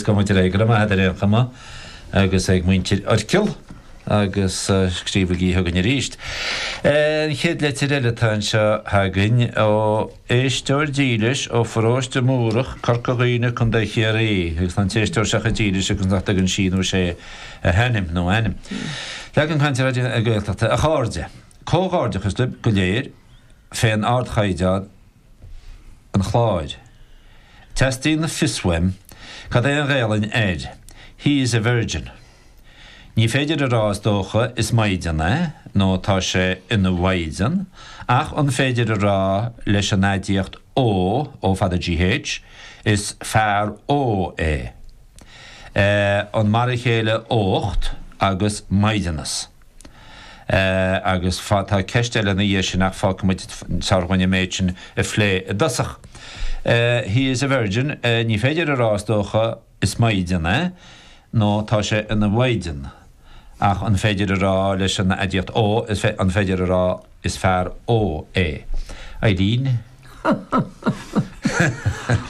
Tá muid ar éigean amach ar aon chuma agus ag muintir Oirchill agus scríobhaigí chugainn arís. An chéad leitir eile atá anseo againn ó éisteoir dílis ó Pharóiste Múrach, Corca Dhuibhne, Co. Chiarraí. Agus tá an t-éisteoir seo chomh dílis agus nach dtugann sí nó sé a hainm nó a ainm. Leagan Cainte Raidió na Gaeltachta a chairde. Comhghairdeachas libh go léir, fén ardchaighdeán an chláir. Teastaíonn fios uaim cad é an Ghaelainn ar He is a virgin. Ní féidir a rá is dócha is maighdean é nó tá sé ina mhaighdean ach an féidir a rá leis an aidiacht ógh, ó fada g h, is fear ógh é. Eh an mar a chéile ócht agus maighdeanas? Agus tá ceist eile ina dhiaidh sin ach fágfaidh muid is fearr dhúinn an méid sin a phlé i dtosach. He is a virgin, ní féidir a rá is dócha, is maighdean é, nó tá sé ina mhaighdean. Ach an féidir a rá leis an aidiacht, ógh, an féidir a rá, Is fear ógh é Aideen.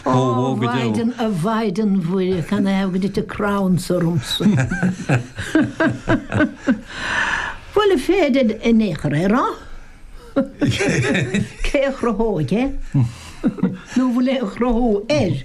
Ó, mhaighdean, a mhaighdean Mhuire, can I have go dtí crabhann sa rumsa? Bhuel, an féidir, a Naochar, é a rá? Cé a chruthódh é? Nó bhfuil aon chruthú air?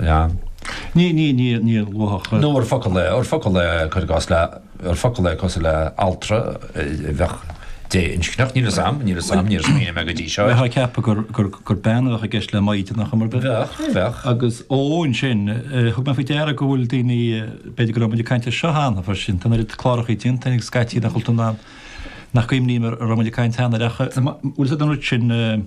Ea. Ní, ní, ní, ní luath. Nó ar focal é, ar focal é, cuir i gcás, le, ar focal é cosúil le altra a bheadh dé-inscneach. Níl a fhios a'm, níl a fhios a'm, níor smaoinigh mé go dtí seo. Bheifeá ag ceapadh gur, gur, gur bean a bheadh i gceist le maighdean nach mbeadh? Bheadh, bheadh. Agus ó ansin, thug mé faoi deara go bhfuil daoine, b'fhéidir go raibh muid ag caint air seo cheana freisin, sin, tá an oiread clárachaí déanta againn scaití den chultúr nach gcuimhním a raibh muid ag caint cheana air ach bhfuil siad an rud sin,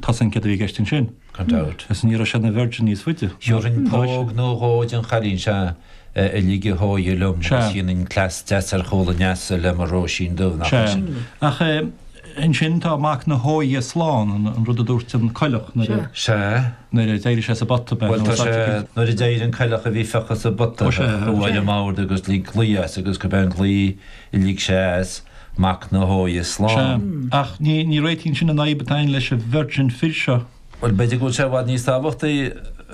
Tá a fhios a'm céard a bhí i gceist ansin, gan dabht, is ní raibh sé ina virgin níos faide. Thabharfainn póg nó dhó don chailín seo a ligfeadh a hóighe liom agus dhéanfainn cleas deas ar chúl an leasa le mo Róisín Dubh, nach é sin? Sea. Ach ansin tá mac na hóighe slán, an rud a dúirt an coileach nuair a. Sea. nuair a d'éirigh sé sa bpota beag. Bhuel, tá sé, nuair a d'éirigh an coileach a bhí fiuchta sa bpota, bhuail ar an mbord agus lig glao as agus gurb é an glao Lig sé as, mac na hóighe Sea. slán. Ach ní réitíonn sin an fhadhb atá againn leis an virgin fir seo. Bhuel, b'fhéidir go bhfuil sé i bhfad níos tábhachtaí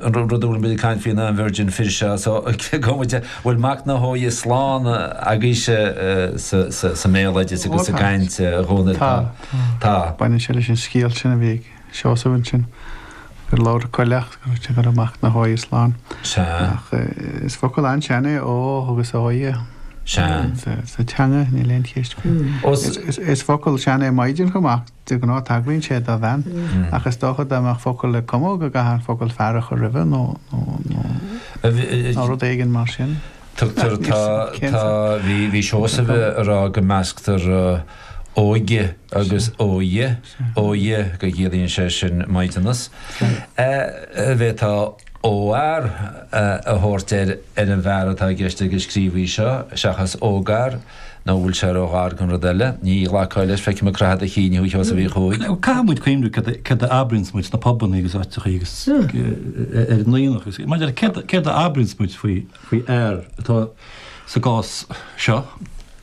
an rud a bhfuilim ag caint faoi ná an virgin fir seo. So, cé go bhfuil mac na hóighe slán agaibhse sa mbéaloideas agus sa gcaint dhúinn, tá. Tá. Baineann sé leis an scéal sin a bhí ag. Seosamh ansin gur labhair Coileach go raibh sé go raibh mac na hÓighe slán. Sea. Ach is focal an-sean é ógh agus Óighe. Sea. Sa teanga níl aon cheist faoi. Ós. Is focal sean é Maighdean chomh maith, de ghnáth tagraíonn sé do bhean. Ach is dócha dá mbeadh focal le cumadh go gcaithfeá an focal fear a chur roimhe nó rud éigin mar sin. Tugtar, tá, tá, bhí, bhí Seosamh a rá go measctar óige agus Óighe. Óighe go gciallaíonn sé sin maighdeanas. An bhféadfá óghfhear a thabhairt ar ar an bhfear atá i gceist ag an scríobhaí seo, seachas ógfhear, nó an bhfuil sé róghar don rud eile? Ní ghlacfá leis, feicim ag croitheadh do chinn thú, a Sheosaimh Uí Chuaig. Caithfidh muid cuimhniú céard a céard a abraíonns muid sna pubannaí agus áiteachaí agus ar an aonach agus mar deir céard céard a abraíonns muid faoi faoi fhear atá sa gcás seo,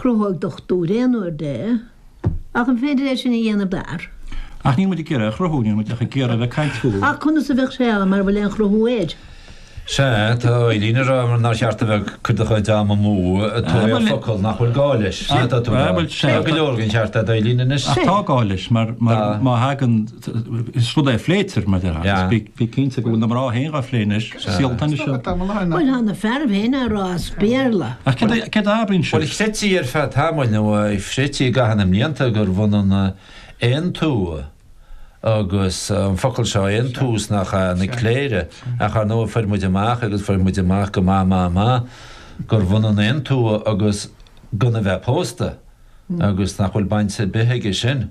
Cruthóidh dochtúir aon uair de, ach an féidir é sin a dhéanamh d'fhear? Ach níl muid ag iarraidh a chruthú, níl muid ach ag iarraidh a bheith ag caint faoi. Ach conas a bheadh sé ann mara bhfuil aon chruthú air? Sea, tá Eibhlín a rá nár cheart a bheith ag cur do chuid ama amú ag tóraíocht focal nach bhfuil gá leis. Tá go leor den cheart a'd, Eibhlín, anois. Ach tá gá leis, mar má thagann. Is rud é a phléitear, mar dhea, agus bí cinnte go bhfuil na mná féin á phlé anois, síolta anois. Bhuel, tá na fearaibh féin á rá as Béarla. Ach céard a abraíonn siad? Bhuel, chreidtí ar feadh tamaill, nó chreidtí i gcaitheamh na mblianta, gurbh ionann aontumha agus an focal seo, aontús, nach ea? Na cléire. Ach ar ndóigh, fuair muid amach, agus fuair muid amach go maith maith maith, gurbh ionann aontumha agus gan a bheith pósta, agus nach bhfuil baint ar bith aige sin.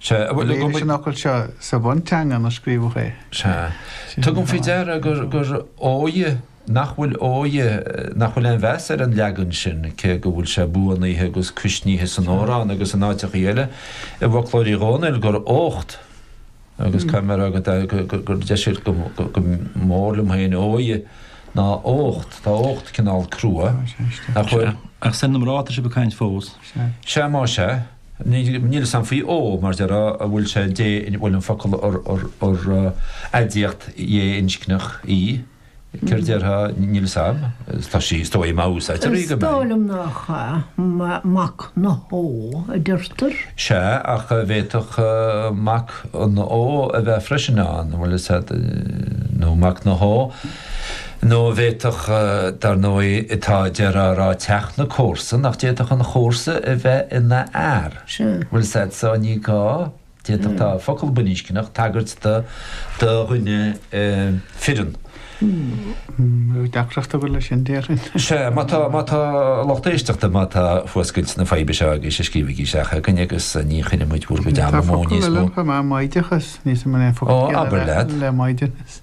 Sea, a bhuel, go. Léiríonn an focal seo sa bhunteanga inar scríobhadh é. Sea. Tugaim faoi deara gur, gur óighe, nach bhfuil óighe, nach bhfuil aon mheas ar an leagan sin, cé go bhfuil sé buanaithe agus cuisnithe san amhrán agus in áiteachaí eile i bhfoclóir Uí Dhónaill, gur ócht, agus caithfidh mé a rá go, go, go, gur deise go, go, go mór liom féin óighe ná ócht, tá ócht cineál crua, nach bhfuil? Ach is ar na mná atá sibh ag caint fós. Sea. Sea, má sea. Níl a fhios a'm faoi ógh, mar deir an bhfuil sé dé in, bhuel an focal ar, ar aidiacht dhé-inscneach í, céard déarfá, níl a fhios a'm, tá sí, is dóigh, má úsáidtear í, go mbeidh. Is dóigh liom nach ea, mac na hóighe a deirtear. Sea, ach an bhféadfadh mac an óigh a bheith freisin ann, bhuel is é, nó mac na. Nó a bhféadfadh, dar ndóigh, tá a deireadh á rá, teach na comharsan, nach d'fhéadfadh an chomharsa a bheith ina fhear. Bhuel, said so, ní gá, d'fhéadfadh, tá focal baininscneach, tagairt do dhuine fireann. Bheadh deacracht agat leis sin, déarfainn. Sea, má tá, má tá lucht éisteachta, má tá fuascailt na faidhbe seo agaibhse, scríobhaigí isteach againn agus ní chuirfimid bhur gcuid ama amú níos mó. Tá focal eile chomh maith, maighdeachas, níl sa mBéarla focal eile le maighdeanas.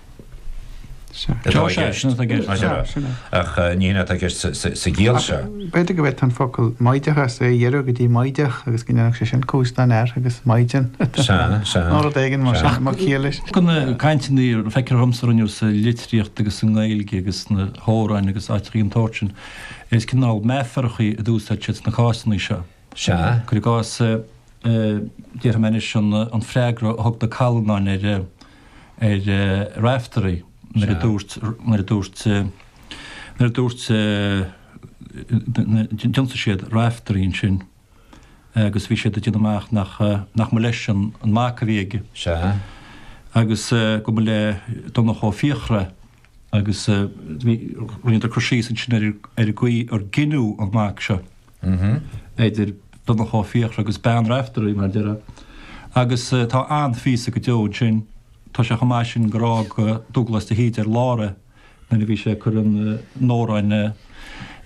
Ach ní hionann atá i gceist sa gciall seo. B'fhéidir go bhféadfadh an focal 'maighdeachas' é a ghiorrú go dtí 'maighdeach' agus go ndéanfadh sé sin cúis don fhear agus 'maighdean' nó rud éigin mar sin mar chiall leis. Ach na cainteannaí feictear dhomsa a rinneadh sa litríocht agus sa nGaeilge agus sna hamhráin agus áiteachaí den tsórt sin, is cineál meafarachaí a d'úsáid siad sna cásanna seo. Sea. Cuir i gcás, déarfaidh mé anois an freagra a thug na Callanáin ar Raiftearaí nuair a dúirt, nuair a dúirt, nuair a dúirt, d'ionsaigh siad Raiftearaí ansin agus bhí siad ag déanamh amach nach, nach mba leis an mac a bhí aige. Sea. Agus go mba le Donncha Ó Fiachra agus bhí, rinneadar cur síos ansin ar an gcaoi ar gineadh an mac seo. idir Donncha Ó Fiachra agus Bean Raiftearaí, mar a déarfá, agus tá an-phíosa go deo ansin. Tá sé chomh maith sin gur fhág Dubhghlas de hÍde ar lár é nuair a bhí sé ag cur an amhráin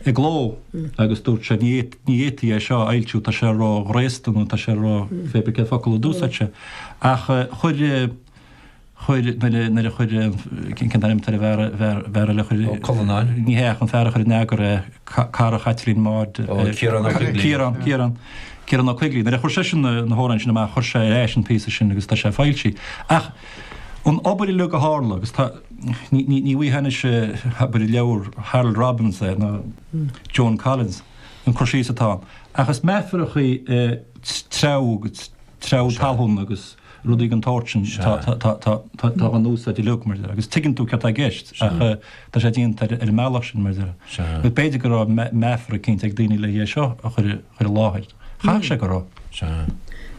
i gcló agus dúirt sé, ní fhéadfaí é seo a fhoilsiú, tá sé ró-ghraosta nó tá sé ró-, pé brí cén focal a d'úsáid sé. Ach chuir. chuir, nuair a chuir, cén t-ainm atá ar an bhfear, bhfear, bhfear eile a chuir. Ó Cuilleanáin? Ní hea, ach an fear a chuir in eagar é, cara Chaitlín Maude. Ó, Ciarán Ó Coigligh. Ciarán, Ciarán. Ciarán Ó Coigligh. Nuair a chuir seisean na, na hamhráin sin amach, chuir sé ar ais an píosa sin agus tá sé foilsithe. Ach an obair uilig a tharla, agus tá, ní, ní, ní bhfaighfeá anois abair i leabhar Harold Robbins é, nó Joan Collins, an cur síos atá ann. Ach is meafaracha iad treabhadh, treabhadh talún agus. Rudaí den tsórt sin atá in úsáid uilig, mar a déarfá, agus tuigeann tú céard atá i gceist ach tá sé déanta ar an mbealach sin, mar a déarfá. Agus b'fhéidir go raibh meafar eicínt ag daoine le haghaidh é seo a chur i láthair. Chaithfeadh sé go raibh.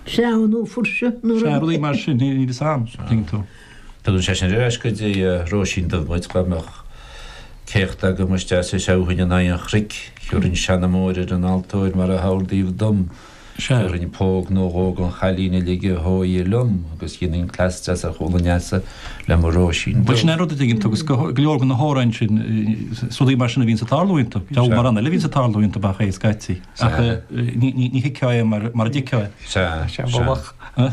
Treabhadh nó fuirseadh nó rud. Rudaí mar sin, a bhíos ann, tuigeann tú. Tugann sé sin ar ais go dtí Róisín Dubh muid dá mbeadh céachta agam is deas a threabhfainn in aghaidh an chnoic, thiúrfainn seanmóir ar an altóir mar a hordaíodh dom. Sea, thiúrfainn póg nó dhó don chailín a lig a hóige liom agus dhéanfainn cleas deas ar chúl an leasa le mo Róisín Bhuel, sin é an rud, an dtuigeann tú, agus go leor de na h-amhráin sin, is rudaí mar sin a bhíonns ag tarlú iontu. Deabhal mórán eile a bhíonns ag tarlú iontu, ach é scaití. Ach ní thuigfeá é mara dtuigfeá é. Sea, sea.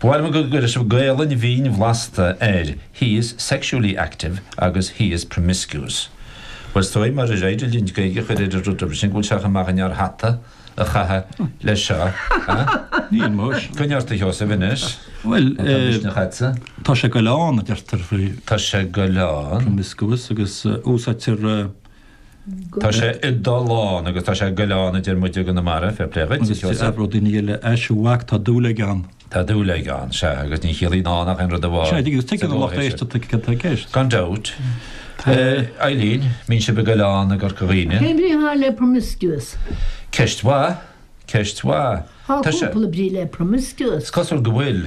Ba mhaith liom go gcuirfeadh sibh Gaelainn bhinn bhlasta air, he is sexually active agus he is promiscuous. Bhuel, is dóigh, marar féidir linn Gaeilge a chur ar an rud roimhe sin, go bhfuil sé chomh maith dhúinn ár hata a chaitheamh leis seo, eh? Níl, muis. Coinnigh ort, a Sheosaimh, anois. Bhuel, eh. Má tá misneach agatsa. Tá sé ag goil ann, a deirtear, faoi. Tá sé ag goil ann. Promiscuous agus úsáidtear. Tá sé ag dul ann agus tá sé ag goil ann a deir muide i gConamara, fair play dhuit, a Sheosaimh. Agus d'fhreagródh daoine eile, Ais a mhac, tá dúil aige ann. Tá dúil aige ann, sea, agus ní chiallaíonn ann ach aon rud amháin. Sin é, agus tuigeann an lucht éisteachta cad tá i gceist. Gan dabht. Eileen, an mbíonn sibh ag goil ann i gCorca Dhuibhne. Cén bhrí atá le promiscuous? Ceist mhaith, ceist mhaith. Tá cúpla brí le promiscuous. Is cosúil go bhfuil.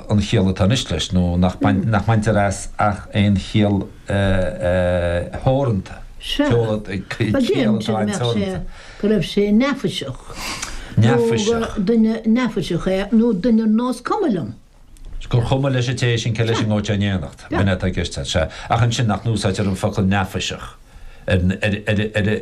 an chiall atá anois leis nó nach mbaintear as ach aon chiall theoranta. Sea, ba dheimhin sin, mheas sé, go raibh sé neafaiseach, nó gur duine neafaiseach é, nó duine ar nós cuma liom. Gur chuma leis an té sin cé leis a ngabhfadh sé in éineacht, b'in é atá i gceist, sea. Ach ansin, nach n-úsáidtear an focal neafaiseach ar.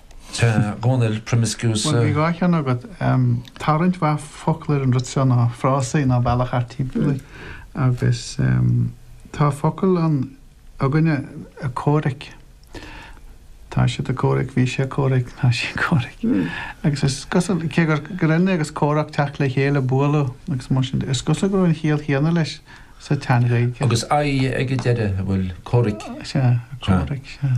Tá, a Dhomhnaill, promiscuous. Bhuel, bhí dhá cheann agat. Tá roinnt mhaith focal ar an rud seo nó frásaí nó bealach thart timpeall air. Agus tá focal ann againne, comhraic. Tá siad ag comhraic, bhí sé ag comhraic, tá sí ag comhraic. Agus is cosúil, cé gur grinn é agus comhrac teacht le chéile, bualadh agus mar sin de, is cosúil go raibh an chiall chéanna leis sa tSean-Ghaeilge. Agus aidhe ag an deireadh, a bhfuil, comhraic. Sea, comhraic, sea.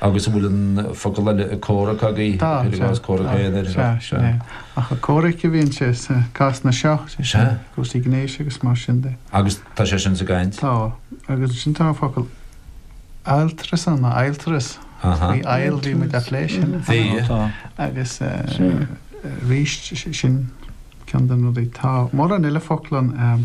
Agus an bhfuil an focal eile ag comhrac agaibh? Tá, Cuir i gcás tá, comhrac féin ar. sea, sin é. Ach ag comhraic a bhíonn sé sna cásanna seo, sé sin, Sea. cúrsaí gnéis agus mar sin de. Agus tá sé sin sa gcaint? Tá, agus ansin tá an focal adhaltras ann, nó adhaltras. Aha. Bhí ail, bhí muid á phlé sin. Bhí. Ó, tá. Agus eh, Sea. arís, si- sin ceann de na rudaí. Tá mórán eile focla ann, eh,